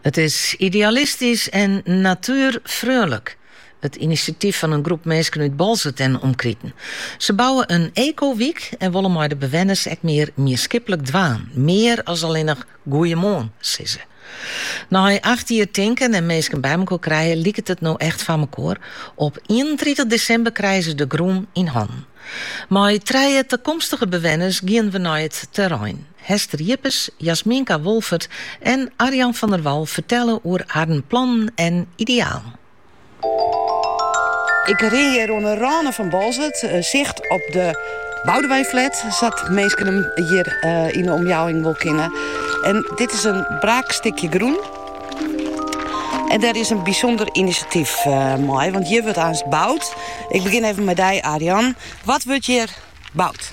It is idealistysk en natuerfreonlik. It inisjatyf fan in groep minsken út Boalsert en omkriten. Se bouwe in ekowyk en wolle mei de bewenners ek mear mienskiplik dwaan. Mear as allinnich goeiemoarn, sizze. Nei acht jier tinken en minsken bymekoar krijen liket it no echt fanmekoar. Op ienentritich desimber krije se de grûn yn hannen. Mei trije takomstige bewenners gean we nei it terrein. Hester Jippes, Jasminka Wolfert en Arjan van der Wal fertelle oer harren plannen en idealen. Ik rin hjir oan de râne fan Boalsert. Sicht op de Boudewijnflat, sa't minsken him hjir yn de omjouwing wol kenne. En dit is in braak stikje grûn. En dêr is in bysûnder inisjatyf mei, want hjir wurdt aanst boud. Ik begjin even mei dy, Arjan. Wat wurdt hjir boud?